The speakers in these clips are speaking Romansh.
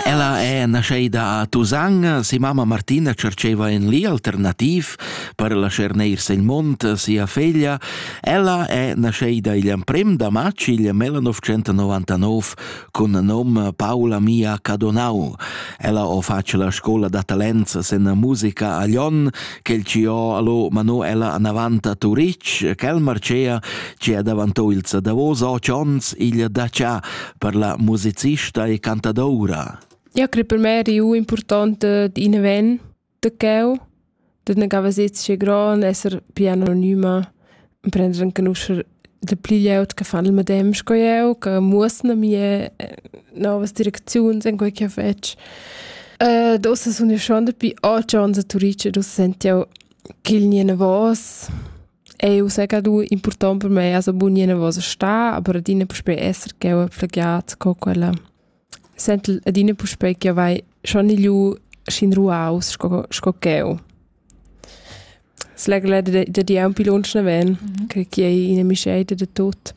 Ella è nascheida a Tusan, si mamma Martina cerceva in li alternativ per lascher neir sin mont sia feglia. Ella è nascheida igl emprem da matg igl 1999 cun nom Paula Mia Cadonau. Ella o face la scola da talents sen musica a Lyon, quel ci ho allo Manuela anavanta Turic, quel marcea ci è davantò il Davos 8 ons igl da Cia, per la musicista e cantadoura. Ja credo per me è importante di in event de cheu, de ne gava sezze gran esser più anonima und prendere anche usher de pli jeut che fan il medem sco eu, che musne mie eh, novas direkziuns in quei che fetch. Uh, dosa sun io schon da pi a chance turice, dosa sent io ch'il nie ne vos. Ei ussa che du impurtont per mei as abbundir inavos a star, aber adina puspei esser ch'jeu ho plagiat co quella. Sentel adina puspei ch'jeu vai schon igliu sc'in ruaus sco sco ch'jeu. S'la gleda da da dir aunc pli lunsch naven, che chi ei ina mischeida da tut.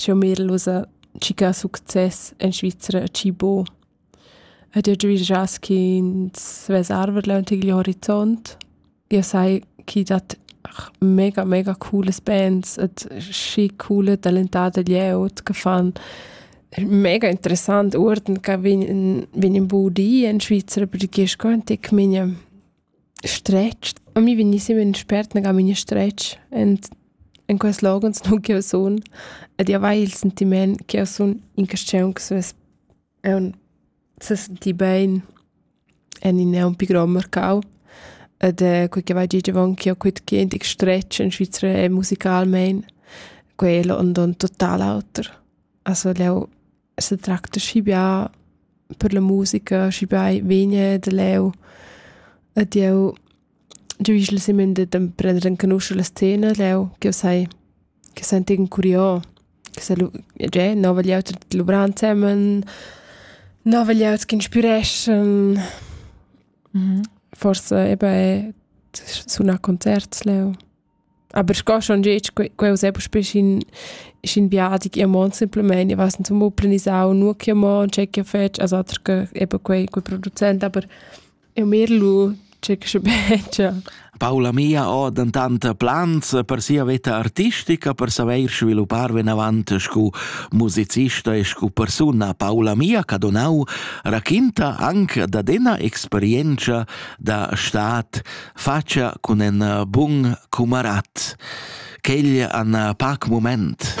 Schi ho merlusa tschichà success in Svizra a chi bo. Ed eau giavüschass chi'ns vess arverdlà ün tgil horizont. Eau sai chi dat mega, mega coolas bands ed schi coole talentà da glieud che fan mega interessant uorden che vegn vegn ün bun di in Svizra perché sco ün tic migna Stretg. A mi vegniss immer in spert nagà memia stretg en, en quels loghens nua ch'jeu sun ed i avair il sentiment ch'jeu sun in caschiun che svess aunc sa sentir bein en in aunc pi grond marcau ed quei che vai gig avon ch'jeu quetgedig stretg en Svizra e musicalmein, quel und und total auter. Also leu se tracta schibià per la musica, schibià vegna da leu. Ed jeu jeu igl semen de prender encanuscher la scena leu, che sai che sentigen curio, che se lu già nova liauta luvran semen, nova liauta che inspireschan. Mhm. Forse eben è suna concerts leu. Aber ich gehe schon jetzt, quel sei beispielsweise in, in Beadung immer simplement, ich weiß nicht, zum Muppeln ist auch nur immer checken fest, also eben quei, quei Produzent, aber in mir lui checkische bene. Paola mia ha dentant plans per sia vita artistica per saver sviluppar vinavant scu musicista e scu persuna. Paola mia Cadonau raquinta anche da dena experienza da stat fatscha cun ün bun cumarat. Quel ha ün pac mumaint.